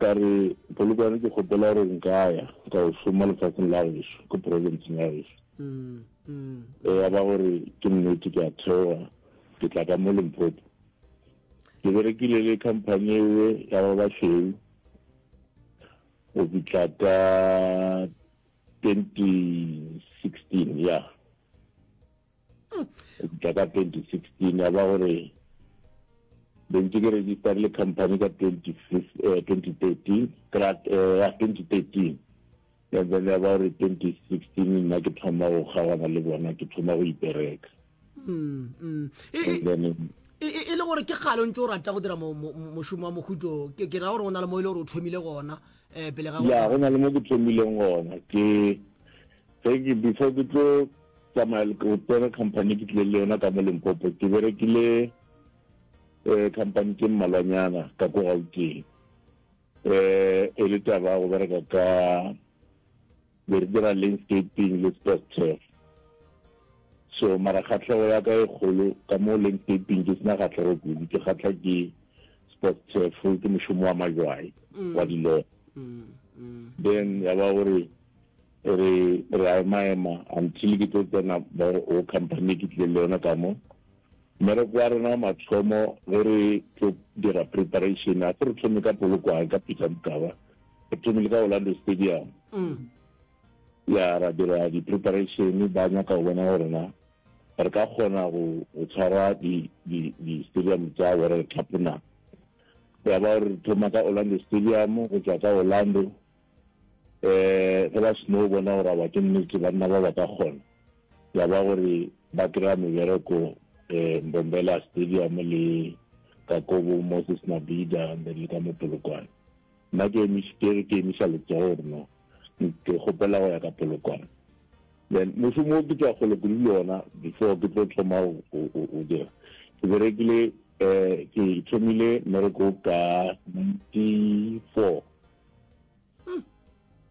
Ka re, Polokwane ke kgopela gore nka ya ka o šoma lefatsheng la geso, ko provinceng ya geso. Ge ya ba gore ke nnete ke a theoga ke tla ka mo Limpopo. Ke berekile le company ewe ya ba basweu go fitlha ka 2016 ya. ka ka 2016 ya ba gore be ntse ke register le company ka 2013 krat ya 2013 and then ya ba gore 2016 nna ke thoma go kgaogana le bona ke thoma go ipereka mm, mm. E, e, e le gore ke kgale o ntse o rata go dira mošomo wa mokhuto ke ra gore o na le mo e le gore o thomile gona um pele ga ya go na le mo ke thomileng gona ke Ge ke before ke tlo tsamaya go tsena company ke tlile le yona ka mo Limpopo ke berekile eh company tse mmalwanyana ka ko Gauteng eh e le taba go bereka ka be re dira landscaping le sports turf so mara kgatlhego ya ka e kgolo ka mo landscaping ke sena kgatlhego kudu ke kgatlha ke sports turf ke mošomo wa majwai mm. wa dilota mm, mm. then ya ba gore Re re a ema ema until ke tlo tsena mo o company ke tlile le yona ka mo. Mmereko wa rena wa mathomo ge re tlo dira preparation a re thome ka Polokwane ka Peter Mokaba. Re thomile ka Orlando Stadium. Mm. Ya ra dira di preparation ba nyaka go bona gore na re ka kgona go go tshwara di di di stadium tsa gore re tlhapona. Ya ba re thoma ka Orlando Stadium go tswa ka Orlando um ge ba seno bona gore aba ke nnete banna ba ba ka kgona ya ba gore ba kry-a mebereko um eh, mbombela stadium le ka kobo moses nabida and then le ka mopolokwane nna ke ke emisa letsogo gore no ke gopela go ya ka polokwane then mošomo o ke tswa gole kudu le ona before ke tlo thoma o dira ke berekile um ke thomile mmereko ka ninety four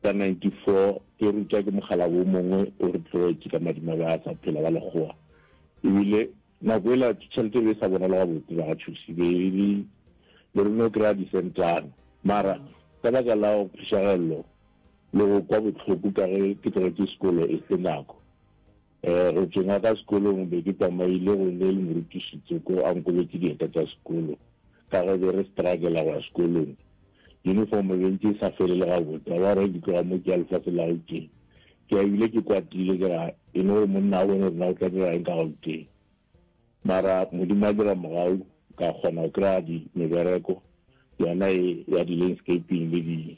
ka 94 ke rutwa ke mogala wo mongwe o re tlogetše ka madimabe a sa phela wa lekgowa ebile nako e la tšhelete be e sa bonala gabotse ba ga thusi be e le le rone o kry-a disentana mara ka baka la go phišagelelo le go kwa botlhoko ka ge ke tlogetše sekolo e se nako Go tšenga ka sekolong be ke tsamaile go ne le morutiši Tsoko a nkobetše dieta tša sekolo ka ge be re struggle-a go ya sekolong. Uniform be ntše e sa fele le gabotse. A wa re ke tloga mo ke ya lefase la Gauteng ke ya ebile ke kwatile ke ra e no gore monna a bone gore na o tla dira eng ka Gauteng. Mara Modimo a dira mogau ka kgona go kry-a di mebereko yona e ya di landscaping le di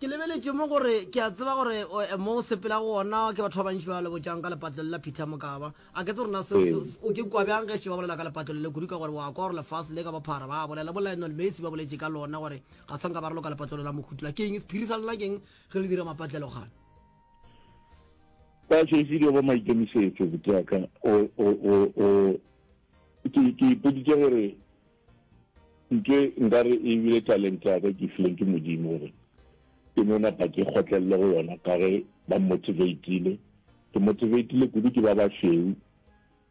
Ke lebeletše mo gore ke a tseba gore mo o sepela go ona ke batho ba bantši ba le botšang ka lepatlelo la Peter Mokaba. A ke tse rona se o ke kwa bjang ge se ba bolela ka lepatlelo le kudu ka gore wa kwa gore lefase le ka bophara ba bolela bo Lionel Messi ba boletše ka lona gore ga tshwanka ba re loka lepatlelo la mokhutula ke eng sephiri sa lona ke eng ge le dira mapatlelo gana ba šešile ba maikemisetso botaka o o o ke ipoditse gore Ntwe nka re e bile talente ya ka ke fileng ke Modimo gore ke no napa ke kgotlelele go yona ka ge ba mmotiveitile. Ke motiveitile kudu ke ba bašweu.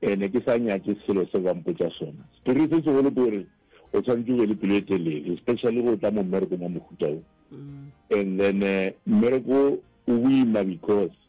Ke ne ke sa nyake selo seo ba mpotša sona. Sephiri se segolo ke gore o tshwanetse o be le pelo e telele especially ge o tla mo mmerekong wa mohuta wo. And then mmereko o boima because